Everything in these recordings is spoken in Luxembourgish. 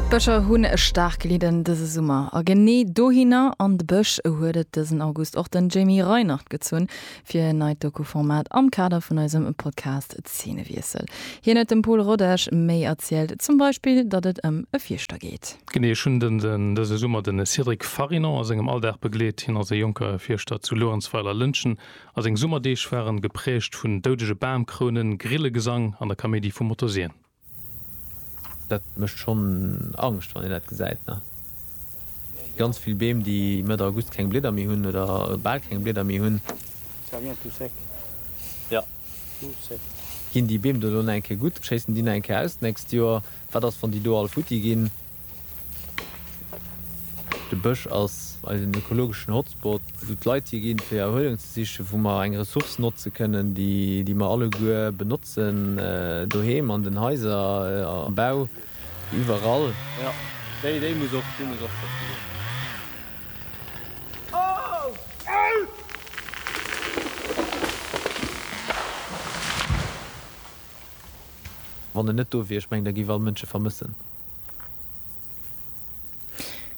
D'Bëscher hunn staark gelidden dëse Summer. A genee dohinner, an de Bësch, huet et dësen August och den Jamie Reinert gezunn, fir en neit Doku-Format am Kader vun eisem Podcast Zeenewiessel. Hien huet dem Pol Rodesch méi erzielt, zum Beispill, datt et ëm e Fierschter geet. Genee, ech hunn dëse Summer de Cédric Farinon a sengem Alldag begleet. Hien ass e jonke Fierschter zu Luerenzweiler-Lëntgen a seng Summerdeeg waren geprägt vun doudege Bamkrounen, Grillegesang an der Kaméidi vu Motorsien. Dat mécht schonn Angscht, wann een dat gesäit, ne? Ganz vill Beem, déi Mëtt August keng Blieder méi hunn oder bal keng Blieder méi hunn. Ginn déi Beem do elo nach eng Kéier gutt? Schéissen déi nach eng Kéier aus d'nächst Joer? Wat ass, wann déi do all futti ginn? De Bësch ass eisen ökologeschen Hotspot, wou d'Leit hi ginn, fir Erhuelung ze sichen, wou mer eng Ressource notze kënnen, déi mer alleguer benotzen, doheem, an den Haiser, am Bau, iwwerall. Jo, déi muss och geschützt ginn. Wann en net do wier, ech mengen, da géif all Mënsch e vermëssen.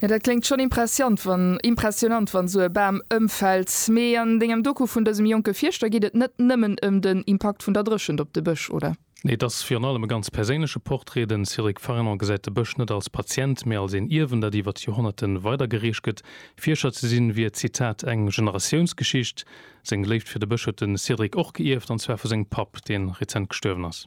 Jo dat kléngt schon impressiant wann impressionant wann sou e Bam ëmfällt. Mee an dengem Doku vun dësem jonke Fierschter geet et net nëmmen ëm den Impakt vun der Dréchent op de Bësch, oder? Nee, et ass virun allem e ganz perséinleche Portrait. Den Cédric Farinon gesäit de Bësch net als Patient, mee als een Ierwen, dat iwwert Joerhonnerte weidergereecht gëtt. Fierscher ze sinn, wier, Zitat, eng Generatiounsgeschicht. Seng Léift fir de Bësch huet de Cédric och geierft, an zwar vu sengem Papp, dee rezent gestuerwen ass.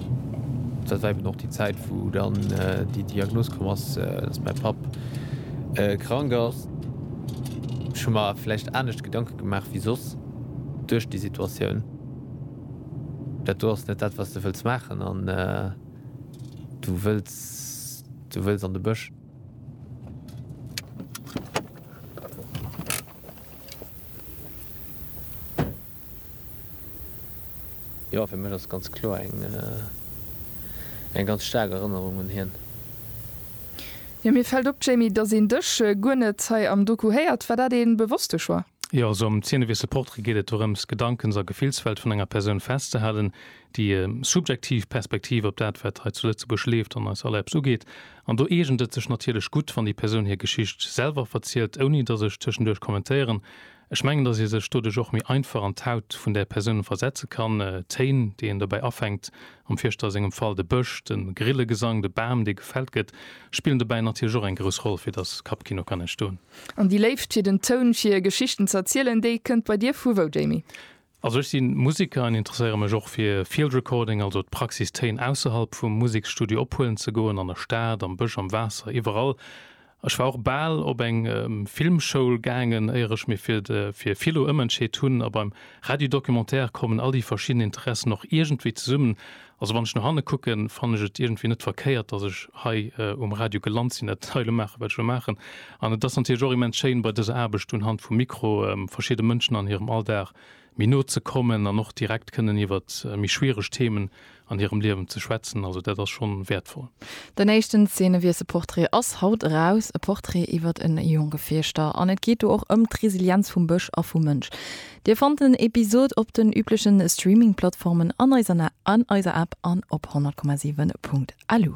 Dat war eben och déi Zäit, wou dann déi Diagnos komm ass, dass mäi Papp krank ass. Ech hu mer vläicht anescht Gedanke gemaach wéi soss duerch déi Situatioun. Dat do ass net dat, wat s de wëlls maachen an du wëlls, du wëlls an de Bësch. Jo, fir mech ass ganz kloer eng eng ganz staark Erënnerung un hien. Jo, mir fällt op, Jamie, dass een dech guer net hei am Doku héiert. War dat ee bewosste Choix? Jo, also am Ziennewiessel Portrait geet et dorëms, d'Gedankens a Gefillswelt vun enger Persoun festzehalen, déi subjektiv Perspektiv op dat, wat hei zu Lëtzebuerg leeft an eis all eppes ugeet. An do eegent et sech natierlech gutt, wann déi Persoun hir Geschicht selwer verzielt, ouni dass ech tëschenduerch kommentéieren. Ech mengen, dass ee sech doduerch och méi einfach an d'Haut vun där Persoun versetze kann. D'Téin, déi een dobäi afänkt, am Fierschter sengem Fall de Bësch, de Grillegesang, de Bam, dee gefällt gëtt, spillen dobäi natierlech och eng grouss Roll, fir dass Kappkino kann entstoen. An déi Léift fir den Toun, fir Geschichten z'erzielen, déi kënnt bei dir vu wou, Jamie? Also ech sinn Musiker an interesséieren mech och fir Field Recording, also d'Praxis Téin ausserhalb vum Museksstudio ophuelen ze goen, an der Stad, am Bësch, am Waasser, iwwerall. Ech war och bal op eng Filmschoul gaangen éier ech mir fir de fir Philo ëmentscheet hunn. A beim Radio Documentaire kommen all déi verschidden Interessen och iergendwéi zesummen Also wann ech no hanne kucken, fannen ech et iergendwéi net verkéiert, dass ech hei um Radio gelant sinn, dat hei elo maachen, wat ech elo maachen. An et ass natierlech och immens schéin, bei dëser Aarbecht un Hand vum Mikro verschiddene Mënschen an hirem Alldag méi no ze kommen an och direkt kënnen iwwer méi schwiereg Themen an hirem Liewen ze schwätzen. Also dat ass schonn wäertvoll. Den éischten Zeenewiesselportrait ass haut eraus, e Portrait iwwer e Jongefierschter. An et geet do och ëm d'Resilienz vum Bësch a vum Mënsch. Dir fannt den Episod op den üblechen Streaming-Plattformen, an eiser App an op 100,7.lu.